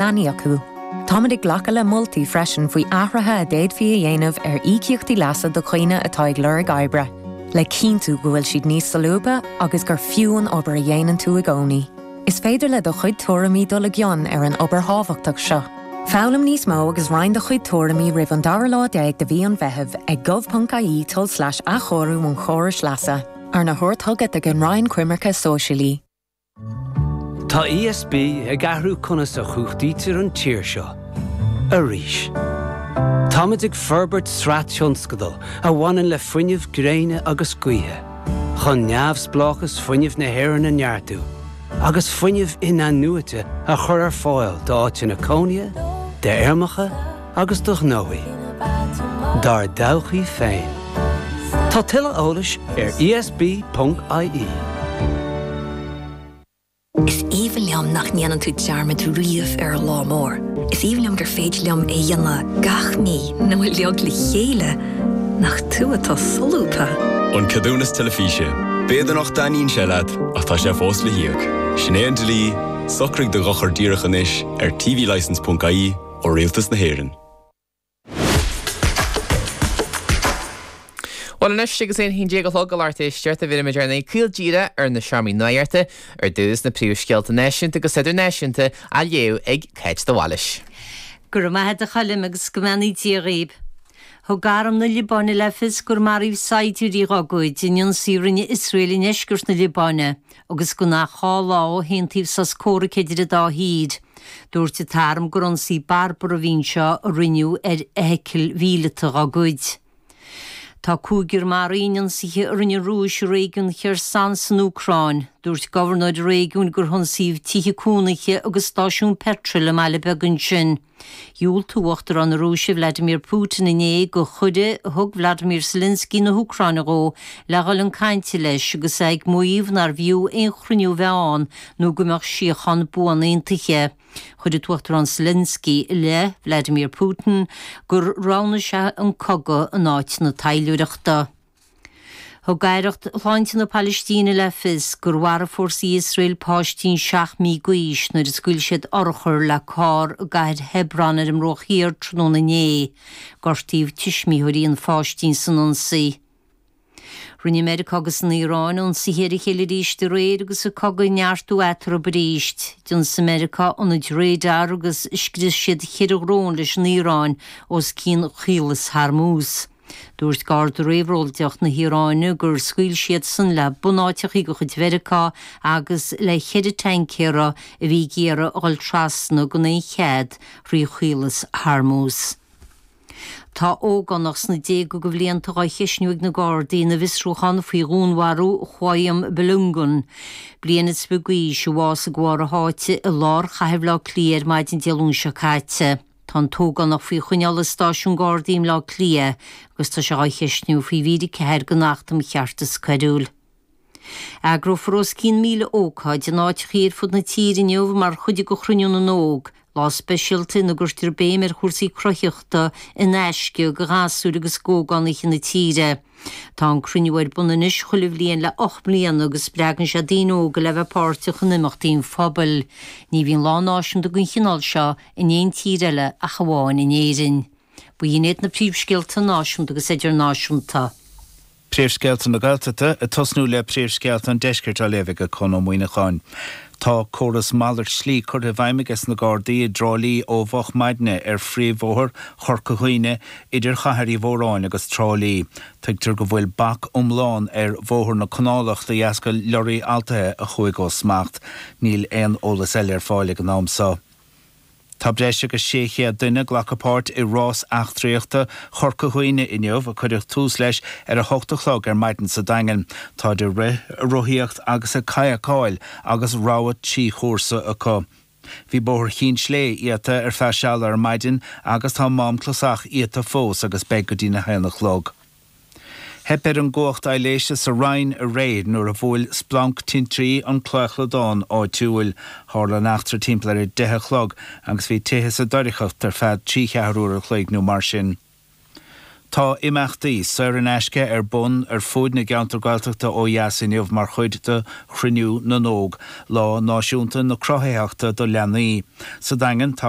leanaí acu. Táimid ag glacadh le moltaí freisin faoi athruithe a d'fhéadfaí a dhéanamh ar íocaíochtaí leasa do dhaoine atá ag lorg oibre, le cinntiú go bhfuil siad níos solúbtha agus gur fiú an obair a dhéanann tú i gcónaí. Is féidir le do chuid tuairimí dul i gcion ar an obair thábhachtach seo. Foghlaim níos mó agus roinn do chuid tuairimí roimh an dara lá déag de mhí an Mheithimh ag gov.ie tulslais athchóiriú an chórais leasa, arna thabhairt chugat ag an Roinn Coimirce Sóisialaí. Tá ESB ag athrú conas a chumhachtaítear an tír seo arís. Táimid ag forbairt sraith tionscadal a bhaineann le fuinneamh gréine agus gaoithe, chun neamhspleáchas fuinnimh na hÉireann a neartú agus fuinneamh in-athnuaite a chur ar fáil d'áiteanna cónaithe, d'fheirmeacha, agus do ghnóthaí dár dtodhchaí féin. Tá tuilleadh eolais ar ESB.ie. Is aoibhinn liom nach ndéanann tú dearmad riamh ar an lá mór. Is aoibhinn liom gur féidir liom é dhéanamh gach mí nó uilig le chéile, nach tú atá solúbtha? An Ceadúnas Teilifíse. B'fhéidir nach dtaitníonn sé leat ach tá sé fós le híoc. Sin é an dlí, socraigh do dhochar díreach anois ar tvlicense.ie. ó Rialtas na hÉireann. Bhuel anois, agus é ina haon déag a chlog ar RTÉ is ceart a bheimid ag dul caol díreach ag na seomraí nuachta. Ar dtús, na príomhscéalta náisiúnta agus idirnáisiúnta á léamh ag Cáit de Bhailís. Go raibh maith a'd a Choilm agus go mbeannaí Dia dhaoib. Thug arm na Liobáine le fios gur maraíodh saighdiúirí dhá gcuid in ionsaí a rinne Iosrael i ndeisceart na Liobáine agus gan ach dhá lá ó haontaíodh sos comhraic idir an dá thír. Dúirt an tArm gur ionsaí barbartha a bhí anseo a rinneadh ar fheithicil mhíleata dá gcuid. Tá cúigear maraithe in ionsaithe a rinne an Rúis i réigiún Kherson san Úcráin. Dúirt gobharnóir an réigiúin gur hionsaíodh tithe cónaithe agus stáisiún peitril i mbaile beag ansin. Dhiúltaigh Uachtarán na Rúise Vladimir Putin inné do chuireadh a thug Volodymyr Zelensky na hÚcráine dhó le dhul chun cainte leis agus é ag maíomh nár bhfiú aon chruinniú a bheith ann nó go mbeadh síocháin buan aontaithe. Chuir an tUachtarán Zelensky i leith Vladimir Putin gur roghnaigh sé an cogadh in áit na taidhleoireachta. Thug aireacht shláinte na Palaistíne le fios gur mharaigh fórsaí Iosrael páistín seacht mí d'aois nuair a scaoil siad urchar le carr i gcathair Hebron ar an mBruach Thiar tráthnóna inné. Gortaíodh tuismitheoirí an pháistín san ionsaí. Rinne Meiriceá agus an Iaráin ionsaithe ar a chéile arís aréir agus an cogadh ag neartú eatarthu arís. D'ionsaigh Meiriceá ionaid radar agus scrios siad ceithre dhrón leis an Iaráin os cionn Chaolas Hormuz. Dúirt Garda Réabhlóideach na hIaráine gur scaoil siadsan le bunáiteachaí de chuid Mheiriceá agus le ceithre taincéara a bhí ag iarraidh a dhul trasna gan aon chead thrí Chaolas Hormuz. Tá ógánach sna déaga de bhlianta á cheisniú ag na Gardaí ina bhfiosrúchán faoi dhúnmharú Qayyum Balogun, bliain is fiche d'aois, a bhásaigh de bharr a sháite i lár chathair Bhaile Átha Cliath ar maidin Dé Luain seo caite. Tá an t-ógánach faoi choinneáil i Stáisiún Gardaí i mBleá Cliath agus tá sé á cheisniú faoi mhír 4 den Acht um Cheartas Coiriúil. Eagrófar os cionn 1,000 ócáid in áiteacha ar fud na tíre inniu mar chuid de Chruinniú na nÓg, lá speisialta ina gcuirtear béim ar chúrsaí cruthaitheachta in aisce do ghasúir agus d'ógánaithe na tíre. Tá an cruinniú ar bun anois chuile bhliain le 8 mbliana agus spreagann sé daoine óga le bheith páirteach in imeachtaí an phobail. Ní bhíonn lá náisiúnta den chineál seo in aon tír eile ach amháin in Éirinn. B'in iad na príomhscéalta náisiúnta agus idirnáisiúnta. Príomhscéalta na Gaeltachta, ag tosnú le Príomhscéalta an Deiscirt á léamh aige Conn Ó Muíneacháin. Tá córas malairt slí curtha i bhfeidhm aige sna Gardaí i dTrá Lí ó mhoch maidne ar phríomhbhóthar Chorca Dhuibhne idir Chathair Uí Mhóráin agus Trá Lí. Tuigtear go bhfuil bac iomlán ar Bhóthar na Canálach de dheasca lorraí altaithe a chuaigh ó smacht. Níl aon eolas eile ar fáil ag an am so. Tá breis agus 600 duine ag glacadh páirt i Rás Eachtraíochta Chorca Dhuibhne inniu, a cuireadh tús leis ar 8 a chlog ar maidin sa Daingean. Táid ag rith, ag rothaíocht agus ag kayakáil agus rogha trí chúrsa acu. Bhí bóthar Chinn Slé iata ar feadh seala ar maidin agus tá Mám Clasach iata fós agus beidh go dtí na 1 a chlog. Theip ar an gcumhacht aibhléise sa Rinn aréir nuair a bhuail splanc tintrí an claochladán áitiúil. Tharla an eachtra timpeall ar a deich a chlog agus bhí tithe sa doircheacht ar feadh trí cheathrú uair a chloig nó mar sin. Tá imeachtaí saor in aisce ar bun ar fuaid na gceantar Gaeltachta ó dheas inniu mar chuid de Chruinniú na nÓg, lá náisiúnta na cruthaitheachta do leanaí. Sa Daingean, tá.